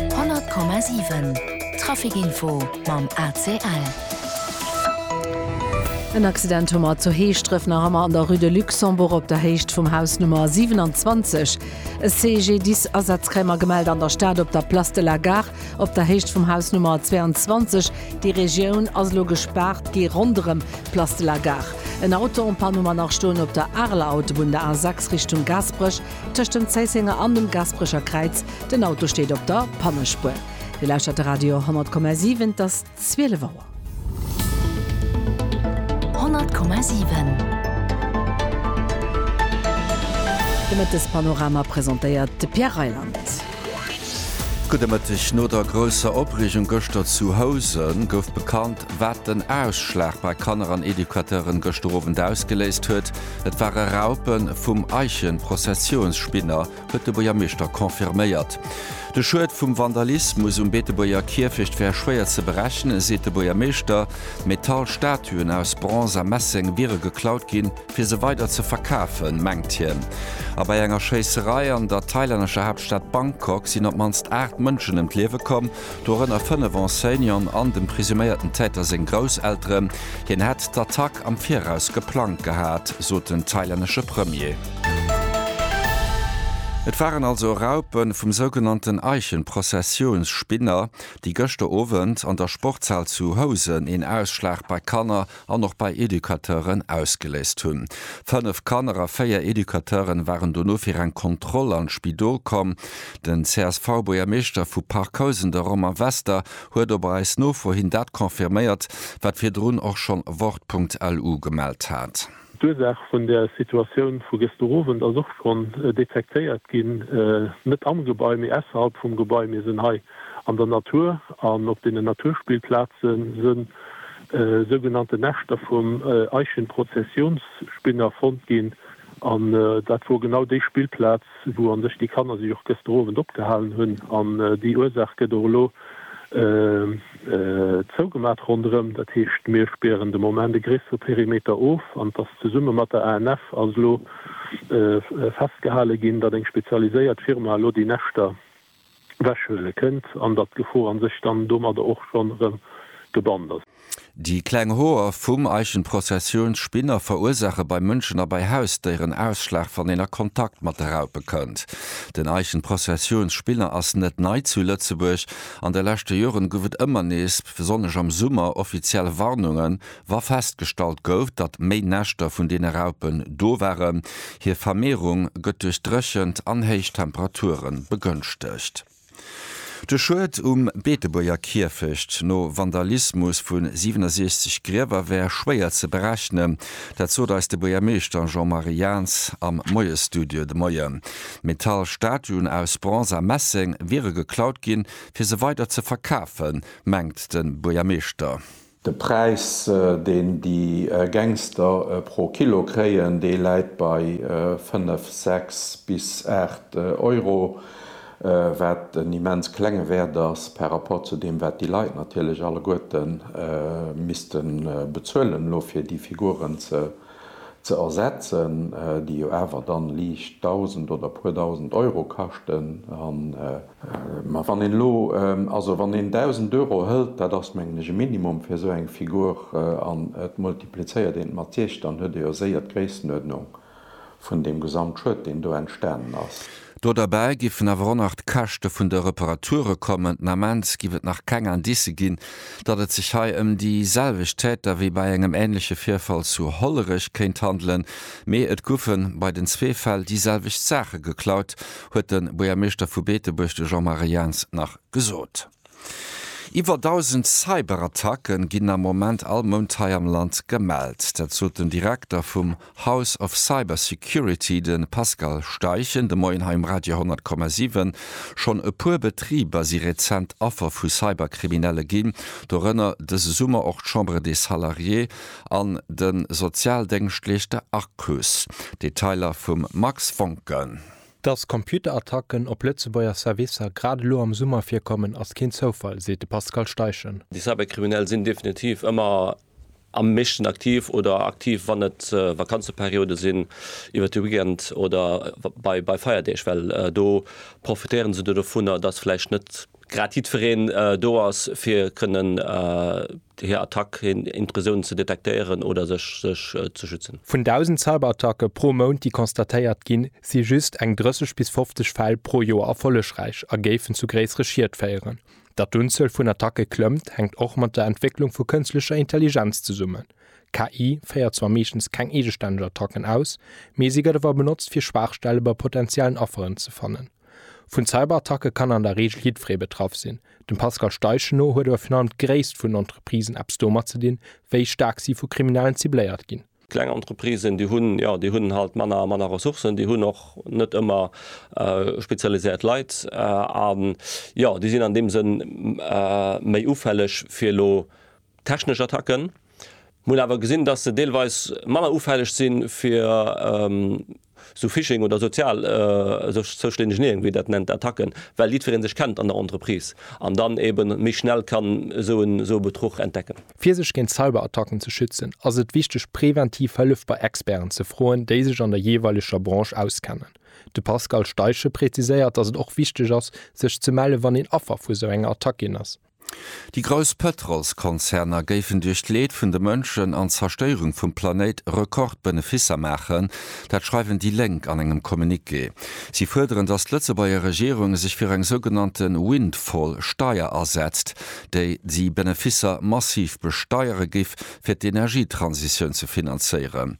100,7 Trafic Info mam ACL. En Accident hu mer zu Heeschdref, nach ëmmer an der Rue de Luxembourg op der Héicht vum Haus Nummer 27. E CGDIS-Asaz kréie mer gemellt an der Stad op der Place de la Gare op der Héicht vum Haus Nummer 22. Déi Regioun ass elo gespaart gi ronderëm d'Place de la Gare. En Auto en panne hu mer nach stoen op der Areler Autobunn, der A6 Richtung Gaasperech. Tëscht dem Zéissenger an dem Gasperecher Kräiz, den Auto steet op der Pannespuer. Dir lauschtert de Radio 10,7, et ass 12 Auer. 10,7 De Mëttespanorama presentéiert de Pierre Reyland. Gudde Mëtteg. No der grousser Opreegung gëschter zu Housen gouf bekannt, wat den Ausschlag bei Kanner an Educateuren gëschter Owend ausgeléist huet. Et ware Raupen vum Eichenprozessionsspinner, huet de Buergermeeschter confirméiert. De Schued vum Vandalismus um Beetebuerger Kierfecht wär schwéier ze berechnen, seet de Buergermeeschter. Metallstatuen aus Bronze a Messeng wiere geklaut ginn, fir se weider ze verkafen, mengt hien. A bei enger Schéisserei an der thailännescher Haaptstad Bangkok sinn op d'mannst 8 Mënschen ëm d'Liewe komm. dorënner fënnef Enseignanten an dem presuméierten Täter seng Grousselteren. Hien hätt d'Attack am Viraus geplangt gehat, sot den thailännesche Premier. Et waren also Raupe vum sougenannten Eichenprozessionsspinner, déi gëschter Owend an der Sportshal zu Housen een Ausschlag bei Kanner an och bei Educateuren ausgeléist hunn. Fënnef Kanner a véier Educateuren waren dono fir eng Kontroll an d'Spidol komm. Den CSV-Buergermeeschter vu Parc Housen, de Romain Wester, huet op eis Nofro hin dat confirméiert, wat virdrun och schonn Wort.lu gemellt hat. D'Ursaach vun der Situatioun vu gëschter Owend ass och schonn detektéiert ginn. Net am Gebai, mee ausserhalb vum Gebai. Mir sinn hei an der Natur an op deenen Naturspillplaze sinn. e sougenannten Näschter vum Eichenprozessionsspinner fonnt ginn. An dat wor genau déi Spillplaz, wou an sech déi Kanner sech och gëster Owend opgehalen hunn. An déi Ursach gëtt och elo zougemat ronderëm. Dat heescht, mir spären de Moment e gréissere Perimeter of. An et ass zesumme mat der ANF ass elo festgehale ginn, datt eng spezialiséiert Firma elo déi Näschter wechhuele kënnt an datt d'Gefor a sech dann domadder och schonn erëm gebannt ass. Déi kleng Hoer vum Eichenprozessionsspinner verursaache bei Mënschen a bei Hausdéieren Ausschlag, wann een a Kontakt mat de Raupe kënnt. Den Eichenprozessionsspinner ass net nei zu Lëtzebuerg. An de leschte Joren gouf et ëmmer nees, besonnesch am Summer, offiziell Warnunge Wa festgestallt gouf, datt méi Näschter vun deene Raupen do waren, hir Vermehrung gëtt duerch d'Dréchent an héich Temperature begënschtegt. De Schued um Beetebuerger Kierfecht no Vandalismus vu 67 Griewer wär schwéier ze berechnen. Dat sot eis de Buergermeeschter Jean-Marie Jaentz am Moiesstudio de Moien. Metall Statuen aus Bronze a Messeng wiere geklaut ginn, fir se weider ze verkafen, mengt de Buergermeeschter. De Präis, deen déi Gangster pro Kilo kréien, dee läit bei 5, 6 bis 8 Euro, wat en immens klenge Wäert ass par rapport zu deem, wat déi Leit natierlech alleguerte misste bezuelen elo, fir déi Figuren ze ersetzen, déi jo awer dann liicht Dausend oder e puer Dausend Euro kaschten. Mä wann een elo, also wann een 1.000 Euro hëlt, dat ass mengen ech e Minimum fir esou eng Figur, an et multiplizéiert een et mat siech, dann huet ee jo séier d'Gréissenuerdnung vun deem Gesamtschued, deen do entstanen ass. Do derbäi géifen awer och nach d'Käschte vun de Reparature kommen. Den Ament géif et nach keng Indicë ginn, datt et sech hei ëm déi selwecht Täter wéi bei engem änleche Virfall zu Hollerech kéint handelen. Mee et goufe bei den zwee Fäll déi selwecht Saache geklaut, huet de Buergermeeschter vu Beetebuerg, de Jean-Marie Jaentz nach gesot. Iwwer 1.000 Cyberattacke ginn am Moment all Mount hei am Land gemellt. Dat sot den Direkter vum House of Cybersecurity, de Pascal Steichen, de Moien hei um Radio 10,7. Schonn e puer Betriber si rezent Affer vu Cyberkriminelle ginn, dorënner dëse Summer och d'Chambre des Salariés an de Sozialdéngschtleeschter Arcus. Detailer vum Max Voncken. Dass Computerattacken op Lëtzebuerger Servicer grad elo am Summer virkommen, ass keen Zoufall, seet de Pascal Steichen. Déi Cyberkriminell sinn definitiv ëmmer am meeschten aktiv oder aktiv, wann et Vakanzeperiode sinn, iwwert de Weekend oder bei Feierdeeg, well do profitéiere se dovunner, dass vläicht net. grad jiddwereen do ass fir kënnen hir Attack, hir Intrusioun ze detektéieren oder sech ze schützen. Vun 1.000 Cyberattacke pro Mount déi constatéiert ginn, si just eng 30 bis 50 Fäll pro Joer erfollegräich a géifen zu gréissere Schied féieren. Datt d'Unzuel vun Attacke klëmmt, hänkt och mat der Entwécklung vu kënstlecher Intelligenz zesummen. KI féiert zwar meeschtens keng eegestänneg Attacken aus, mee si gëtt awer benotzt fir Schwaachstelle bei potenziellen Afferen ze fannen. Vun Cyberattacke kann an der Reegel jiddweree betraff sinn. Dem Pascal Steichen no huet awer virun allem d'Gréisst vun Entreprisen eppes domat ze dinn, wéi staark si vu Kriminellen cibléiert ginn. Kleng Entreprisen, déi hunn, jo, déi hunn halt manner a manner Ressourcen, déi hunn och net ëmmer spezialiséiert Leit a jo, déi sinn an deem Sënn méi ufälleg fir elo technesch Attacken. Mir hunn awer gesinn, dass se deelweis manner ufälleg si fir esou Phishing oder sozial, Social-Engineering, wéi ee dat nennt, Attacken, well jiddweree sech kennt an der Entreprise an dann eeben méi schnell kann esou en Betruch entdecken. Fir sech géint Cyberattacken ze schützen, ass et wichteg, präventiv Hëllef bei Experten ze froen, déi sech an der jeeweileger Branche auskennen. De Pascal Steichen präziséiert, dass et och wichteg ass, sech ze mellen, wann een Affer vu sou enger Attack ginn ass. Déi grouss Pëtrolskonzerner géifen duerch d'Leed vun de Mënschen an d'Zerstéierung vum Planéit Rekordbeneficer maachen. Dat schreiwen déi Lénk an engem Communiqué. Si fuerderen, datt d'Lëtzebuerger Regierung sech fir eng sougenannte Windfall-Steier asetzt, déi déi Beneficer massiv besteiere géif, fir d'Energietransitioun ze finanzéieren.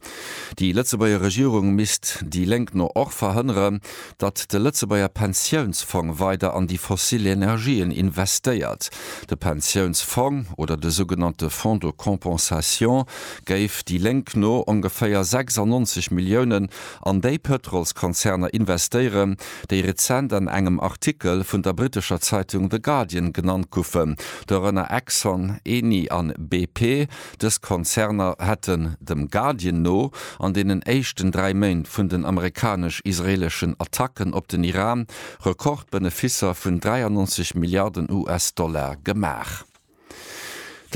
Déi Lëtzebuerger Regierung misst, déi Lénk no, och verhënneren, datt de Lëtzebuerger Pensiounsfong weider an déi fossil Energien investéiert. De Pensiounsfong, oder de sougenannte Fonds de compensation, géif déi Lénk no ongeféier 96 Milliounen an déi Pëtrolskonzerner investéieren, déi rezent an engem Artikel vun der brittescher Zeitung The Guardian genannt goufen, dorënner Exxon, Eni an BP. Dës Konzerner hätten, dem Guardian no, an deenen éischten dräi Méint vun den amerikanesch-israeleschen Attacken op den Iran Rekordbeneficer vun 93 Milliarden US-Dollar gemaach.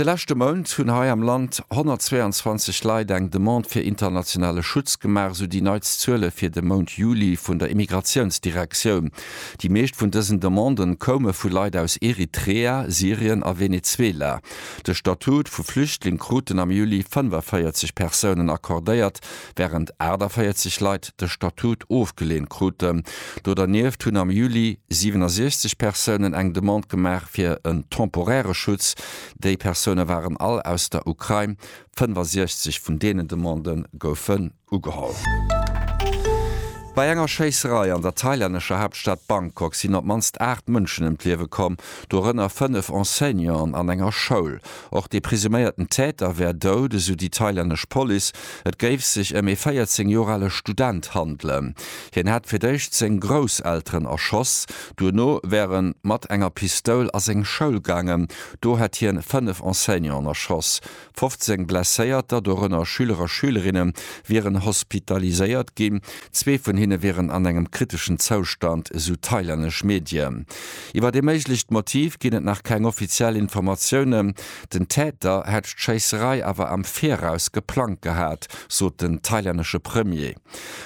De leschte Mount hunn hei am Land 122 Leit eng Demande fir internationale Schutz gemaach, esou déi neitst Zuele fir de Mount Juli vun der Immigratiounsdirektioun. Déi meescht vun dësen Demanden koume vu Leit aus Eritrea, Syrien a Venezuela. De Statut vu Flüchtling kruten am Juli 45 Persounen accordéiert, wärend 48 Leit de Statut ofgeleent kruten. Do dernieft hunn am Juli 67 Persounen eng Demande gemaach fir en temporäre Schutz. Déi Persoune waren all aus der Ukrain. 65 vun deenen Demanden goufe ugeholl. Bei enger Schéisserei an der thailännescher Haaptstad Bangkok sinn op d'mannst 8 Mënschen ëm d'Liewe komm, dorënner 5 Enseignanten an enger Schoul. Och dee presuméierten Täter wär dout, esou déi thailännesch Police. Et géif sech ëm ee 14 Joer ale Student handelen. Hien hätt fir d'éischt seng Grousselteren erschoss. Duerno wär e mat enger Pistoul a seng Schoul gaangen. Do hätt hien 5 Enseignanten erschoss. 15 Blesséierter, dorënner Schüler a Schülerinne wieren hospitaliséiert ginn. Zwee vun hinne wieren an engem kriteschen Zoustand, esou thailännesch Medien. Iwwer ee méiglecht Motiv ginn et nach keng offiziell Informatiounen. Den Täter hätt d'Schéisserei awer am Viraus geplangt gehat, sot den thailännesche Premier.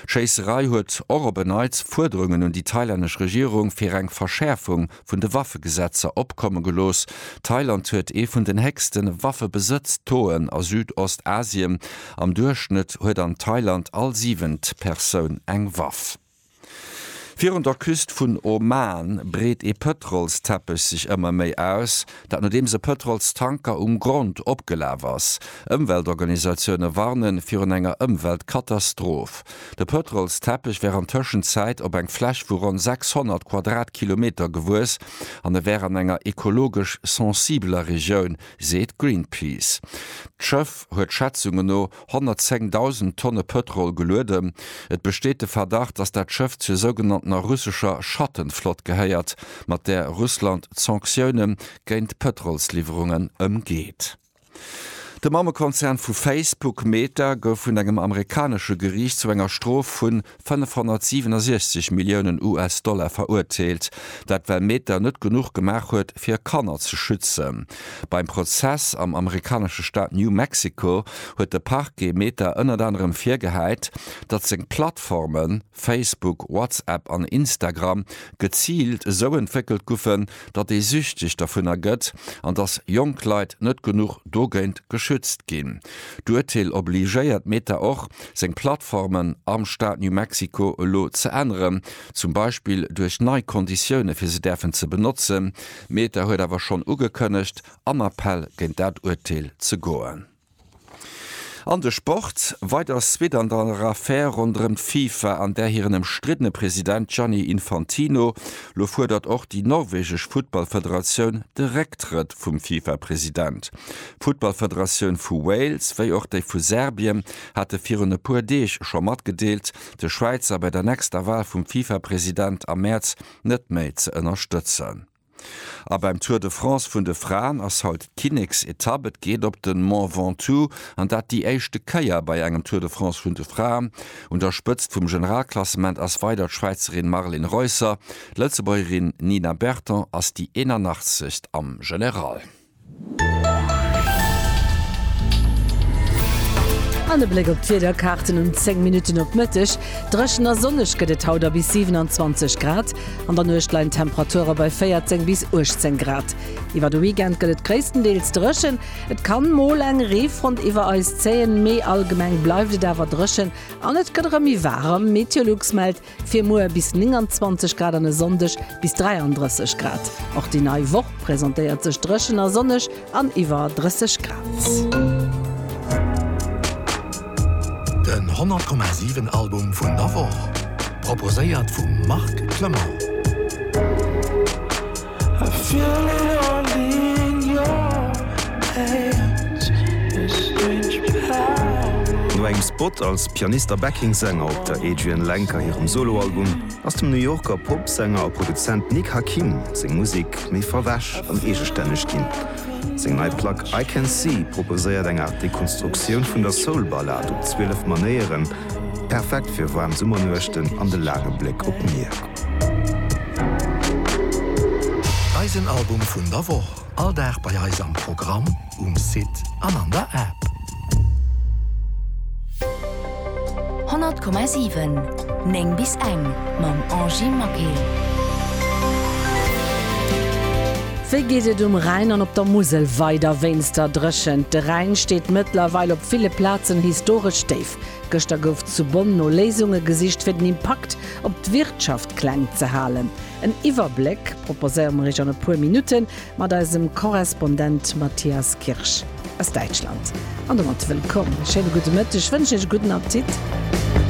D'Schéisserei huet och op en Neits Fuerderungen un déi thailännesch Regierung fir eng Verschäerfung vun de Waffegesetzer opkomme gelooss. Thailand huet ee vun den héchste Waffebesëtz-Taux'en a Südost-Asien, am Duerchschnëtt huet an Thailand all siwent Persoun eng Waff. Virun der Küst vun Oman breet ee Pëtrolsteppech sech ëmmer méi aus, Dat nodeems e Pëtrolstanker um Grond opgelaf ass. Ëmweltorganisatioune warne virun enger Ëmweltkatastroph. De Pëtrolsteppech wär an Tëschenzäit op eng Fläch vu ronn 600 Quadratkilometer gewuess an e wär an enger ekologesch sensibeler Regioun, seet Greenpeace. D'Schëff huet Schätzunge no 110.000 Tonne Pëtrol gelueden. Et besteet de Verdacht, datt dat Schëff zur sougenanntener russescher Schattenflott gehéiert, mat där Russland d'Sanktioune géint d'Pëtrolsliwwerungen ëmgeet. De Mammekonzern vu Facebook, Meta, gouf vun engem amerikanesche Geriicht zu enger Strof vun 567 Milliounen US-Dollar verurteelt. Dat well Meta net genuch gemaach huet, fir Kanner ze schützen. Beim Prozess am amerikanesche Staat New Mexico huet de Parquet Meta ënnert anerem virgehäit, datt seng Plattformen, Facebook, WhatsApp an Instagram, geziilt esou entwéckelt guffen, datt ee süchteg dervunner gëtt an datt jonk Leit net genuch dogéint geschützt ginn. D'Urteel obligéiert Meta och, seng Plattformen am Staat New Mexico elo ze änneren, zum Beispill duerch nei Konditioune fir se däerfen ze benotzen. Meta huet awer schonn ugekënnegt, an Appell géint dat Urteel ze goen. An de Sport, Weider Suite an der Affär ronderëm d'FIFA an där hiren ëmstriddene President Gianni Infantino. Lo fuerdert och déi norwegesch Futtballfederatioun de Récktrëtt vum FIFA-President. D'Futtballfederatioun vu Wales, wéi och déi vu Serbien hate virun e puer Deeg scho matgedeelt, de Schwäizer bei der nächster Wal vum FIFA-President am Mäerz net méi ze ënnerstëtzen. A beim Tour de France vun de Fraen ass haut d'Kinneksetapp. Et geet op de Mont Ventoux an dat déi éischte Kéier bei engem Tour de France vun de Fraen. Un der Spëtzt vum Generalklassement ass weider d'Schwäizerin Marlen Reusser. D'Lëtzebuergerin Nina Berton ass déi 81. am General. An e Bléck op d'Wiederkaarten um 10 Minutten op Mëtteg, Dréchen a sonneg gëtt et haut a bis 27 Grad. An der Nuecht leien d'Temperature bei 14 bis 18 Grad. Iwwer de Weekend gëtt et gréisstendeels dréchen, et ka mol eng Reefront iwwer eis zéien, mee allgemeng bleift et awer dréchen an et gëtt erëm méi waarem. Meteolux mellt Fir muer bis 29 Grad an e Sonndeg bis 33 Grad. Och déi nei Woch presentéiert sech dréchen a sonneg an iwwer 30 Grad. Den 100,7 Album vun der Woch proposéiert vum Marc Clement. No engem Spot als Pianist a Backing Sänger op der Adrianne Lenker hirem Soloalbum ass dem New Yorker Popsänger a Produzent Nick Hakim seng Musek méi verwäsch an eegestänneg ginn. Seng nei Plack I Can See proposéiert eng Aart Dekonstruktioun vun der Soul-Ballad op 12 Manéieren, perfekt fir waarm Summernuechten an de laange Bléck op d'Mier. Eisen Album vun der Woch, all Dag bei eis am Programm, um Site an an der App. 100,7, 9 bis eng, mam Angy Maquet. Wéi geet et um Rhäin an op der Musel weider? Wéinst der Dréchent, de Rhäin steet mëttlerweil op ville Plazen historesch déif. Gëschter gouf zu Bonn no Léisunge gesicht, fir den Impakt Op d'Wirtschaft kleng ze halen. En Iwwerbléck proposéiere mer iech an e puer Minutte mat eisem Korrespondent Matthias Kirsch aus Däitschland. An domat wëllkomm, e schéine gudde Mëtteg, wënschen iech e gudden Appetit.